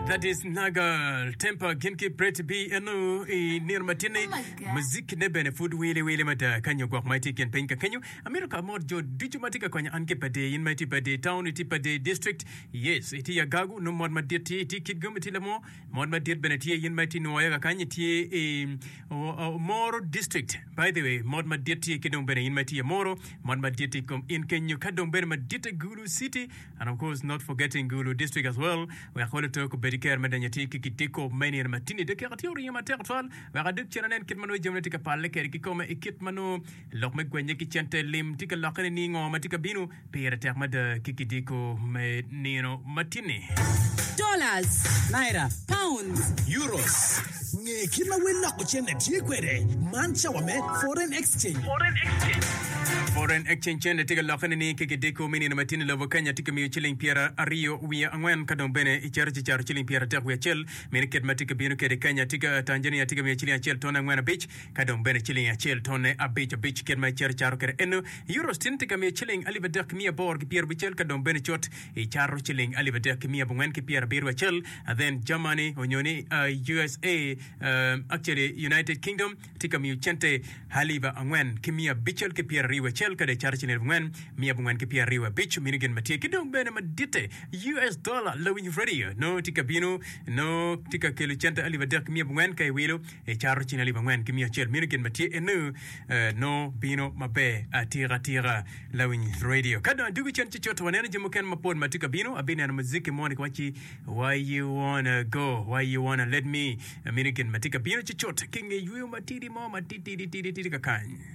That is Nagal Temper gin ki Pretty B eno i nino matinni muzikine bene pud wili wili mada ka nyo gwok ma itye i kin piny ka kenyo amito ka amot jo ducu ma tye ka konyo an ki pade in ma itye pade town itye pade district yes itye Agagu nongo mot madit tye itye Kitgum itye Lamo mot madit bene tye in ma itye Nwoya kakany itye i o- o- Moro district by the way mot madit tye ki dong bene in ma itye Moro mot madit tye i kom in kenyo ka dong bene madit Gulu City and of course not forgetting Gulu district as well wek Ol Otok obed ki kero me donyo atir ki Kitiko me i nino matini dok keko tye oringo matek twal wek adog cen anen kit ma nongo jamine tye ka palle kede ki kome i kit ma nongo lok me gwenye ki cente lim tye ka lokke nining ngo ma tye ka bino pire tek mada ki Kitiko me nino matini. Dollars. Naira. Pounds. Euros. Nge kit ma wel loko cente tye kwede. Man cawa me foreign exchange. Foreign exchange cente tye ka lokke nining ki kideko me nino matino? Lobo Kenya tye ka miyo ciling pyeraryo wiye angwen ka dong bene icero ci caro ciling pyeratek wiye acel. Meno kit ma tye ka bino kwede. Kenya tye ka, Tanzania tye ka miyo ciling acel tone angwen abic ka dong bene ciling acel tone abic abic kit ma icero caro kwede eno. Euros tyen tye ka miyo ciling alip adek ki miya aboro ki pyerabicel ka dong bene cut. I cato ciling alip adek ki miya abongwen ki pyerabiro acel, then Germany onyo ni usa um actually United Kingdom tye ka miyo cente alip angwen ki miya abicel ki pyerariyo acel kadi acato ciling alip angwen miya abongwen ki pyerariyo abic mini gin matye ki dong bene maditte us dollar lawiny radio nongo tye ka bino nongo tye ka kelo cente alip adek ki miya abongwen ka iwilo I caro cing alip angwen ki miya acel meno gin ma tye eno nongo bino maber atika tika lawiny radio. Ka dong adugu cen ci coto waneno jami mukene mapol ma tye ka bino abineno muziki moni ki waci why you wanna go why you wanna let me meno gin ma tye ka bino ci cot ki nge yweyo matidi mo matitidi tidi tidi kakany.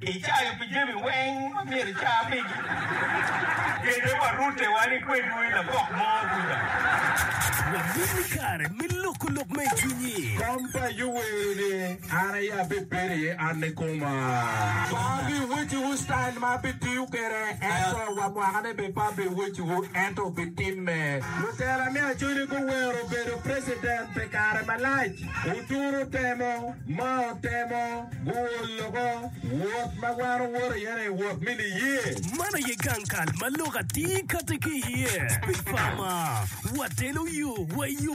Icayo pi jami weng ma myero ica pigi. Kete wa rute wan i kwedwu i labok mo kuca. Wabin ni kare me loko lok ma i cwinyi. Kom pa Ayub wero ni, An aye abibedo iye, an ni koma. Pe abiweciwu style ma abitiyo kwede, ento wa mwakane bene pe abiweciwu, ento obitimme. Lutela me Acholi guwero bedo president pi kare malac. Oturo temo. ma otemo guwo loko wot ma wan owoto iye ni wot me niye. Man aye gang kal ma lok atir kati ki iye. Pi pama, watelo yo wa i yo